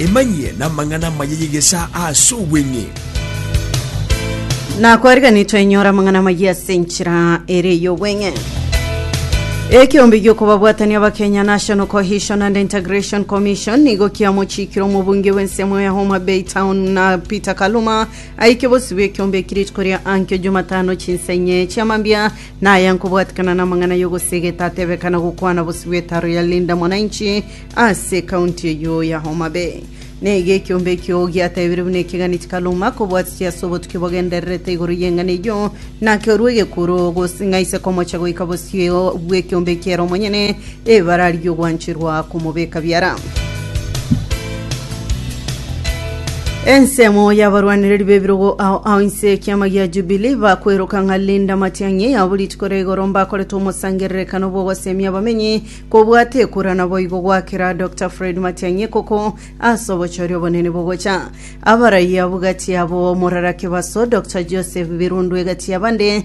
Emanyie namang'ana amaya y'egesaa ase obweng'e. Na kwarigani twenyora amang'ana amaya ase enchera ere y'obweng'e. Ekeombe giokobabwatania abakenya National Cohesion and Integration Commission nigo kiamochikire omobunge bw'ensemo ya Homa Bay Town na Peter Kaluma aike bosibwa ekeombe eki rituko ria ankio Jumatano chinsa inye chiamambia Naya nkobwatikana namang'ana yogosegeta atebe kana gokwana bosio bwetaro ya Linda Mwananchi ase ekaunti eyio ya Homa Bay. Neiga ekiombe ekio giatebire buna ekegani chikaruma kobwatiti ase obotuki bogendererete igoro y'eng'ana eyio, nakerua egekuro gose ng'a ise komocha goika bosio bw'ekiombe ekiere omonyene Ebara ri'ogwancherwa komobeka biara. Ensemo y'abarwanereri b'ebirogo ao ao inse y'ekiama gia Jubilee bakweroka ng'a Linda Matiang'i abo rituko ria igoro mbakorete omosangererekano bw'ogosemia abamenyi kobwate ekura naboigo goakera Dokta Fred Matiang'i ekoko ase obochori obonene bogocha abaraiabu gati yabo Morara Kebaso Dokta Joseph Birundu egati yabande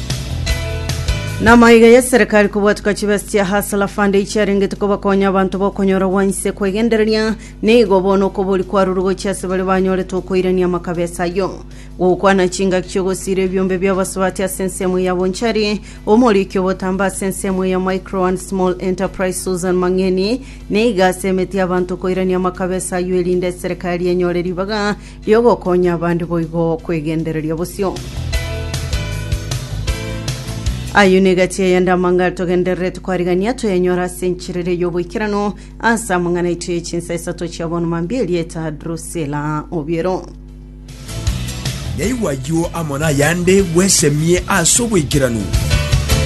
Namaiga y'eserekari kobwateka chibesa chia Hustler Fund echiarengete kobakonya abanto bokonyora gwanse kwegendereria, nigo bono okobori kwarure gochia ase baria banyorete okoirania amakabesa ayio. Gokwana chingaki chi'ogosiira ebiombe bi'abasubati ase ensemo ya Bonchari, omoriki obotambe ase ensemo ya Micro and Small Enterprise Susan Mang'eni nigo ase emete y'abanto koirania amakabesa ayio erinde eserekari enyore ribaga Y'ogokonya abande boigo kwegendereria bosio. Ayio nigo egati eyende amang'ana togendererete kwarigania toyenyora ase enchera eria y'oboikeranu ase amang'ana aito ye chinsa isato chia bono mambia erieta Drusila Obiero. Yaigwa ayio amo nayande, bwesemie ase oboikeranu.